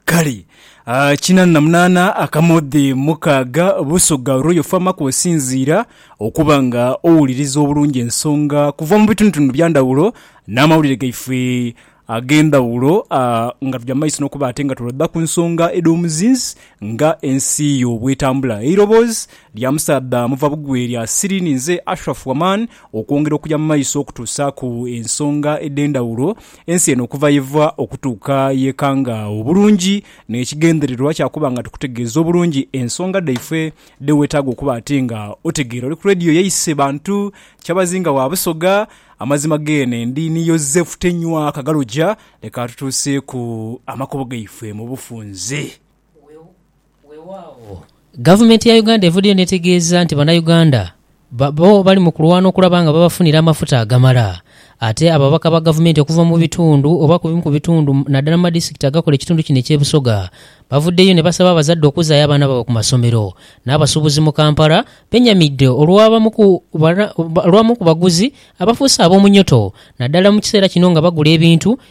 Kale, kinana na munana akamoodhi mukaaga busogha olw'oyofamaku osinziira okuba nga owuliriza obulungi ensonga kuva mu bitundutundu bya ndhawulo n'amawulire gaife ag'endhawulo nga tuja mu maiso n'okuba ate nga tulodha ku nsonga edh'omuzinzi nga ensi yo bw'etambula. Eiroboozi lya musaadha muva bugwe lya Siri ninze Ashraf Waman okwongera okuja mu maiso okutuusaaku ensonga edh'endhawulo Ensi eno okuva yeva okutuuka yekanga obulungi n'ekigendererwa kya kuba nga tukutegeeza obulungi ensonga dhaife dhe weetaaga okuba ati nga otegeera. Oli ku Radio yaise bantu kyabazinga wa Busoga. Amazima geene ndi ni Yozefu Tenywa Kagaloja. Leka tutuuseeku amakubo gaife mu bufunze. Weewaawo, Gavumenti ya Uganda evuddeyo n'etegeeza nti Bannayuganda bo bali mu kulwana okulaba nga babafunira amafuta agamala. Ate ababaka ba Gavumenti okuva mu bitundu oba ku bimu ku bitundu naddala mu madisitikiti agakola ekitundu kino eky'e Busoga bavuddeyo ne basaba abazadde okuzaayo abaana baabwe ku masomero. N'abasuubuzi mu Kampala benyamidde olw'abamu ku olw'abamu ku baguzi abafuuse ab'omunyoto naddala mu kiseera kino nga bagula ebintu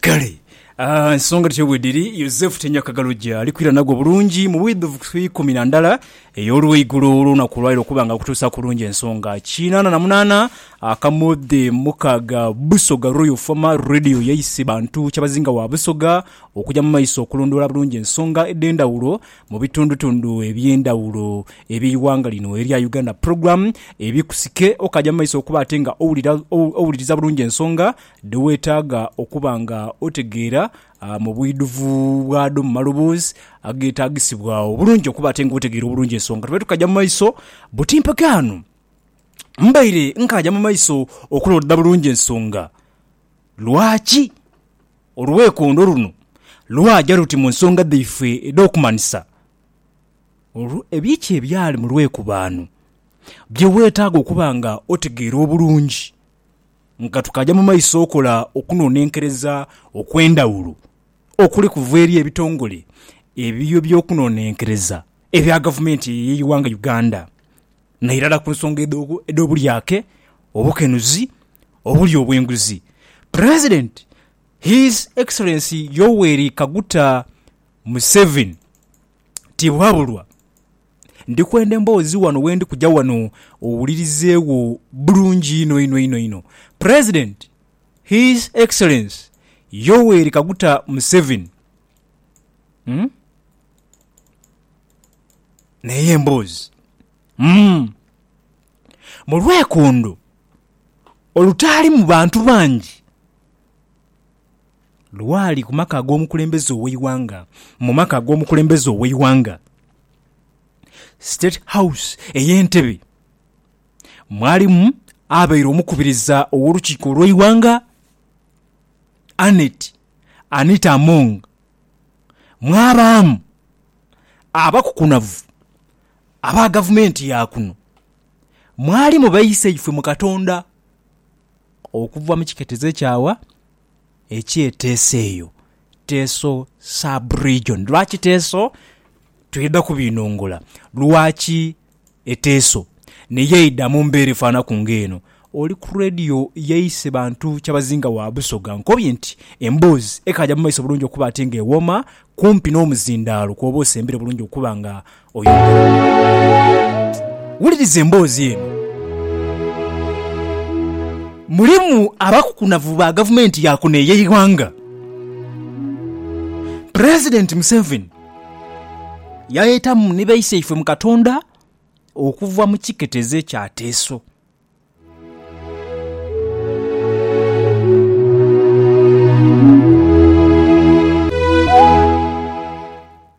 Kale, ah, ensonga dhityo bwe dhiri, Yosefu tinyakagalo gye ali kwira nagwo bulungi mu bwidhuvu ku ikumi na ndala ey'olweigulo olw'olunaku olwali okuba nga akutuusa ku lungi ensonga kinaana na munaana akamodhe mukaaga Busoga Royal Former Radio yaise bantu Kyabazinga wa Busoga okuja mu maiso okulondoola bulungi ensonga edh'endhawulo mu bitundutundu eby'endhawulo eby'eighanga lino erya Uganda Program ebikusike okaaja mu maiso okuba ate nga owulira, owuliriza bulungi ensonga dhe weetaaga okuba nga otegeera mu bwidhuvu bwadho, mu maloboozi ageetaagisibwa obulungi okuba ate nga otegeera obulungi ensonga. Tube tukaja mu maiso buti mpaka ghano. Mbaire nkaaja mu maiso okuloodha bulungi ensonga. Lwaki olwekondo luno lwaja luti mu nsonga dhaife edh'okumanhisa? Biki ebyali mu lwekubaano bye weetaaga okuba nga otegeera obulungi? Nga tukaja mu maiso okola okunonenkereza okwendhawulo okuli kuva eri ebitongole ebyo byokunonenkereza ebya gavumenti eyo eyeighanga Uganda nairala ku nsonga edhobulyake, obukenuzi, obulyo obwenguzi, president His Excellency Yoweri Kaguta Museveni tibwabulwa. Ndi kwenda emboozi wano wendi kuja wano owulirizeegho bulungi inho inho inho inho. President, His Excellence Yoweri Kaguta Museveni, umm neeyo emboozi, umm mu lwekondo olutaalimu bantu bangi. Lwali ku maka ag'omukulembeze ow'eighanga. Mu maka ag'omukulembeze ow'eighanga, State House ey'Entebbe, mwalimu abaire omukubiriza ow'olukiiko olw'eighanga, Annet Anita Among, mwabaamu abakukunavu aba gavumenti ya kuno, mwalimu baiseife mu Katonda. Okuva mu kiketezo ekyawa ekye Teso eyo, Teso sub-region. Lwaki Teso? Twidha kubinhongula lwaki e Teso ni yo eidha mu mbeera efaanaku ng'eno. Oli ku Radio yaise bantu kyabazinga wa Busoga ankobye nti emboozi ekaaja mu maiso bulungi okuba ate ng'ewooma kumpi n'omuzindaalo kw'oba osembere bulungi okuba nga Wuliriza emboozi eno. Mulimu abakukunavu ba gavumenti ya kuno ey'eighanga. Pulezidenti Museveni yaetamu ni baiseifwe mu Katonda okuva mu kiketezo ekya Teso.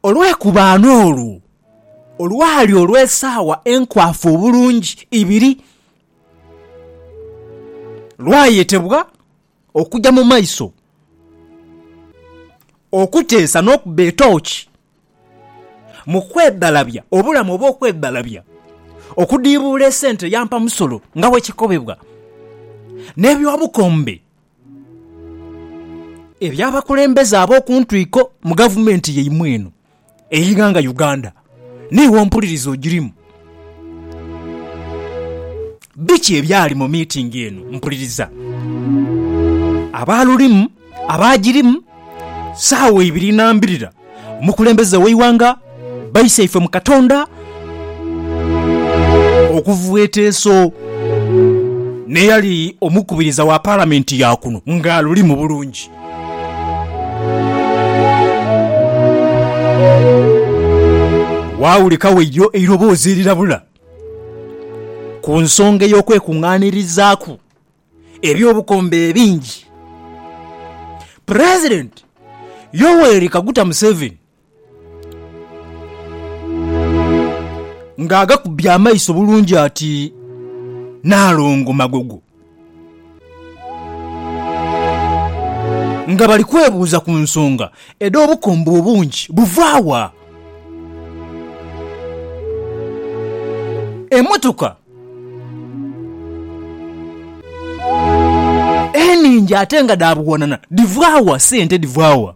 Olwekubaano olwo olwali olw'esaawa enkwafu obulungi ibiri, lwayetebwa okuja mu maiso okuteesa n'okuba etooki mu kwebbalabya, obulamu obw'okwebbalabya, okudiibuula esente yampa musolo nga bwe kikobebwa n'eby'obukombe eby'abakulembeze ab'oku ntwiko mu gavumenti yaimwe eno ey'eighanga Uganda. Niiwe ompuliriza ogirimu. Biki ebyali mu miitingi eno? Mpuliriza. Abaalulimu, abaagirimu, saawa ibiri na mbirira, omukulembeze w'eighanga, baisaife mu Katonda okuva eteeso, n'eyali omukubiriza wa Palamenti ya kuno ng'alulimu bulungi. Waawulikagho eidho eiroboozi erirabula ku nsonga ey'okwekungaanirizaaku eby'obukombe ebingi. Pulezidenti Yoweri Kaguta Museveni Ng'agakubye amaiso bulungi ati, Naalongo Magogo. Nga bali kwebuuza ku nsonga edh'obukombe obungi buva wa, emotoka enhingi ate nga dha buwanana dhiva wa, sente dhiva wa?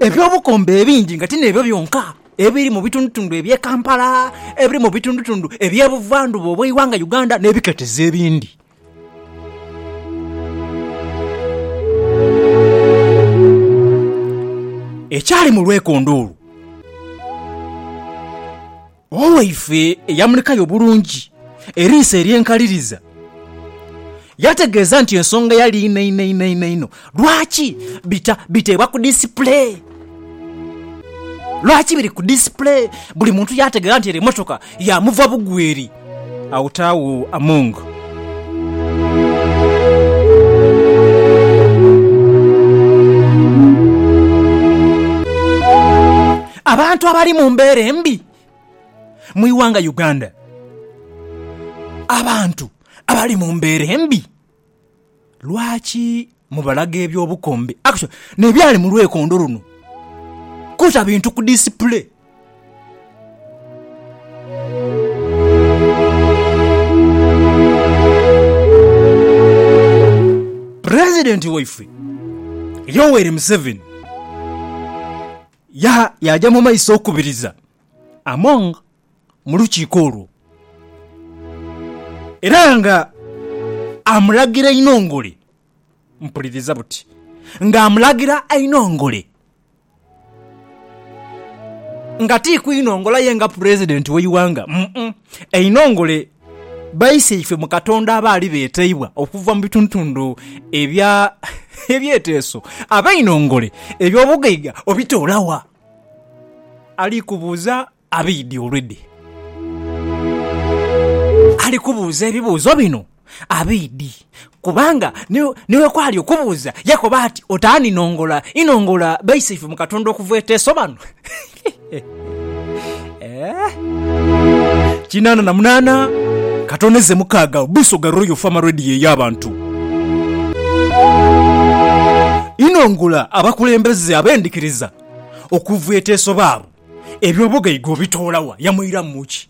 Eby'obukombe ebingi nga ti n'ebyo byonka ebiri mu bitundutundu eby'e Kampala, ebiri mu bitundutundu eby'e buvandhuba obw'eighanga Uganda n'ebiketezo ebindi. Ekyali mu lwekondo olwo. Owaife eyamulikayo obulungi eriiso ery'enkaliriza yategeeza nti ensonga yali inho inho inho inho inho lwaki bita biteebwa ku disipule. Lwaki biri ku disipule? Buli muntu yaategeera nti ere emmotoka ya muva bugweri. Agho ti agho Among. Abantu abali mu mbeera embi mu ighanga Uganda. Abantu abali mu mbeera embi lwaki mubalaga eby'obukombe n'ebyali mu lwekondo luno? Kuta bintu ku disipule. Pulezidenti waife Yoweri Museveni. Yaha yaaja mu maiso okukubiriza Among mu lukiiko olwo, era nga amulagira einhongole. Mpuliriza buti nga amulagira einhongole, nga ti kwinhongola ye nga Pulezidenti w'eighanga, mm, einhongole Baiseife mu Katonda abaali beeteibwa okuva mu bitundutundhu ebya ebyeteeso abeinhongole eby'obugaiga obitoola wa? Ali kubuuza abaidhi olwedhe. Ali kubuuza ebibuuzo bino abaidhi. Kubanga ni bwe kwali okubuuza, yakoba ati, Otaani nongola, inongola baisaife mu Katonda okuva eteesobanu? Kinaana na munaana katono eze mukaaga Busoga Royal Farm Radio ey'abantu. Inongola abakulembeze ab'endhikiriza okuva eteesobaabu. Eby'obugaiga obitoola wa? Yamuiramu ki?